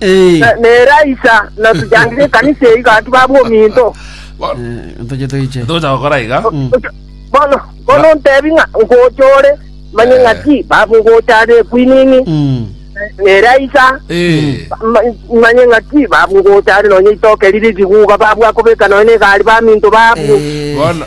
Na- Neraisa natuchandire ekanisa eyi gatu baba ominto Ntachete iche. Ntocha gokora iga. bono bono ntebi ng'a nkochore manye ng'a ki baba nkochare ekwining'i Mm. neraisa Eh. ma- manye ng'a ki baba nkochare nonye itoke riri riguga babu akobeka nonye na egari baminto babu Bono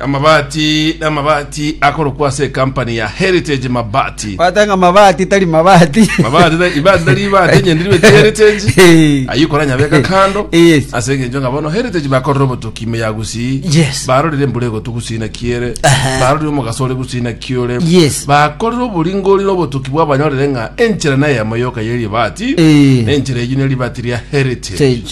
Amabati n'amabati akorokwa ase ekampani ya Heritage Mabati. Kwata ng'a mabati tari mabati. Mabati ta- ibati tari ibati enyende ribe ti Heritage. Eh. Ayio koranya beka kando. Yes. Ase engencho ng'a bono Heritage bakorire obotoki ime ya Gusii. Yes. Barorire embura egotu Gusii na kiere. Aha. Barorire omogaso ore Gusii na kiore. Yes. Bakorire oboringori na obotoki bwabanyorire ng'a enchera neyemo yoka y'eribati. Eh. Na enchera eyio neribati ria Heritage. Sage.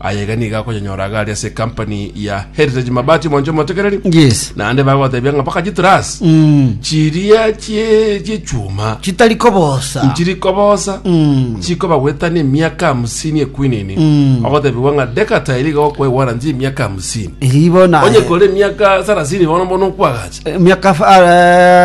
Aye iga nigo akonyanyora iga ari ase ecompany ya Heritage Mabati omonche omotekereri. Yes. Naende bagotebia ng'a mpaka chitras Mm. chiria chie chiechuma Chitari kobosa. nchiri kobosa Mm. chikoba gwetana emiaka hamsini ekwinini Mm. ogotebiwa ng'a dekata eri iga okwae warranty emiaka hamsini Ribo na. onye kore emiaka sarasini bono bono okwagacha Eh, Miaka fa- ah,